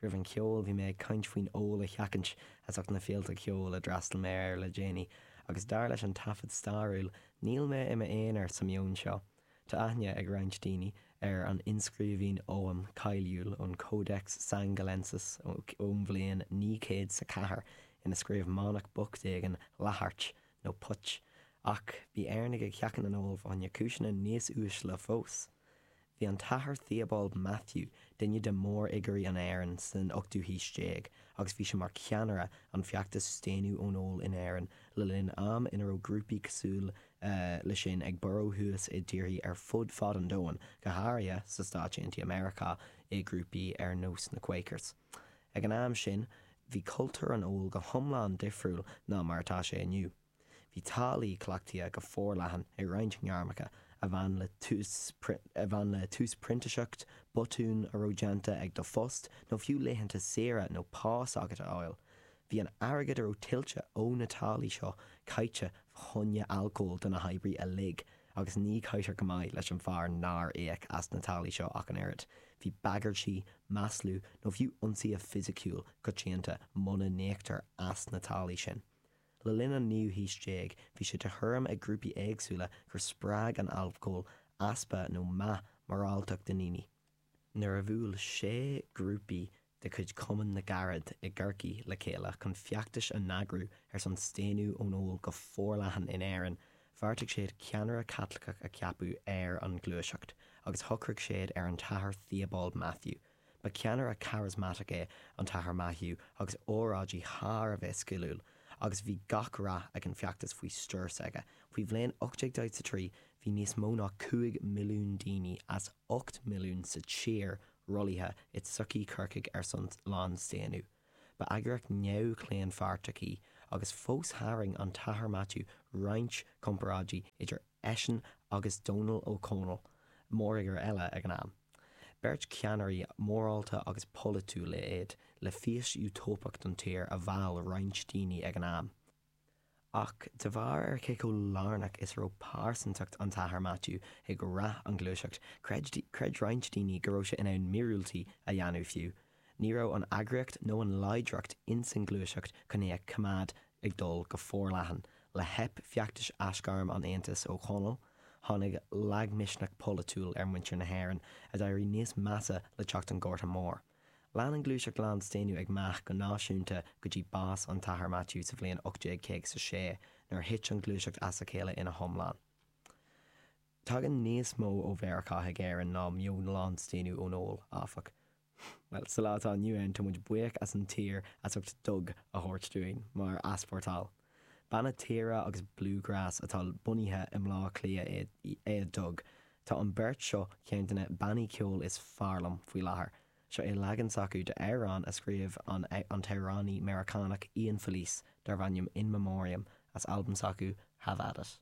Roimh an cheol bhí mé ag caint faoin ól a sheachaint as ucht na féilte ceoil a d'fhreastail mé air le déanaí agus dar leis an taifead stairiúil níl mé i m'aonar sa meon seo. Tá aithne ag roinnt daoine ar an inscríbhinn Oghaim cáiliúil ón Codex Sangallensis ón bhliain naoi gcéad 's a ceathair ina scríobh manach bocht éigin Latheirt nó póit ach bhí Éireannaigh ag sheachaint an óil fá choinne cúiseanna níos uaisle fós. Bhí an tAthair Theobald Mathew, duine de mhórfhigiúirí an Éireann san ochtú haois déag, agus bhí sé mar cheannaire an feachtas staonadh ón ól in Éirinn le linn am ina raibh grúpaí cosúil leis sin ag borradh thuas i dtíorthaí ar fud fad an domhain, go háirithe sa Stáit Aontaithe Meiriceá i grúpaí ar nós na Quakers. Ag an am sin, bhí cultúr an óil go hiomlán difriúil ná mar atá sé inniu. Bhí táillí cleachtaidh go forleathan i roinnt ngairmeacha a bhain le tús printiseacht, botún a raibh déanta ag do phost nó fiú laethanta saoire nó pá s'agat a fháil. Bhí an airgead a raibh tuillte ó na táillí seo caite fa choinne alcóil do na hoibrithe uilig agus ní chaitear go maith leis an fear nár íoc as na táillí seo ach an oiread. Bhí bagairtí, maslú nó fiú ionsaithe fisiciúil coitianta muna n-íoctar as na táillí sin. Le linn an naoú haois déag bhí sé de thuairim ag grúpaí éagsúla gur spreag an alcól easpa nó meath moráltacht i ndaoine. Nuair a bhuail sé grúpaí de chuid Chumann na gCarad i gCorcaigh le chéile chun feachtais a n-eagrú ar son staonadh ón ól go forleathan in Éirinn, bheartaigh siad ceannaire Caitliceach a cheapadh ar an ghluaiseacht agus shocraigh siad ar an tAthair Theobald Mathew. Ba cheannaire charismatic é an tAthair Mathew agus óráidí thar a bheith sciliúil, agus bhí gach rath ag an feachtas faoi stiúir s'aige. Faoi bhliain 1843 bhí níos mó ná cúig milliún daoine as ocht milliún sa tír rollaithe i tsochaí Corcaigh ar son lánstaonadh. Ba eagraíocht neamhchlaonpháirteach í, agus fós tharraing an tAthair Mathew roinnt comparáidí idir Eisean agus Dónall Ó Conaill, mórfhigiúr eile ag an am, beirt cheannairí morálta agus polaitiúil iad le fís útóipeach don tír a mheall roinnt daoine ag an am. Ach de bharr ar cé chomh lárnach is a raibh pearsantacht an tAthair Maitiú ag rath an ghluaiseacht, creid roinnt daoine go raibh sé in ann míorúiltí a dhéanamh fiú Ní raibh an eagraíocht nó an láidreacht ins an ngluaiseacht chun é a choimeád ag dul go forleathan. Le theip feachtais Aisghairm an Aontais Ó Chonaill, tháinig lagmhisneach polaitiúil ar mhuintir na hÉireann, a d'éirigh níos measa le teacht an Ghorta Mhóir. Lean an ngluaiseacht lánstaonadh ag meath go náisiúnta go dtí bás an tAthair Maitiú sa bhliain 1856 nuair a thit an ghluaiseacht as a chéile ina hiomlán. Tagann níos mó ó Mheiriceá chuig Éirinn ná meon lánstaonadh ón ól, áfach. Bhuel, sa lá atá inniu ann, tá muid buíoch as an tír as ucht Dug a thabhairt dúinn mar easpórtáil. Banna tíre agus bluegrass atá bunaithe i mBleá Cliath é Dug. Tá an beirt seo ceann de na bannaí ceoil is fearr liom faoi láthair. Seo é leagan s'acu de amhrán a scríobh an t-amhránaí Meiriceánach Ian Felice darb ainm In Memoriam as albam s'acu Have At It.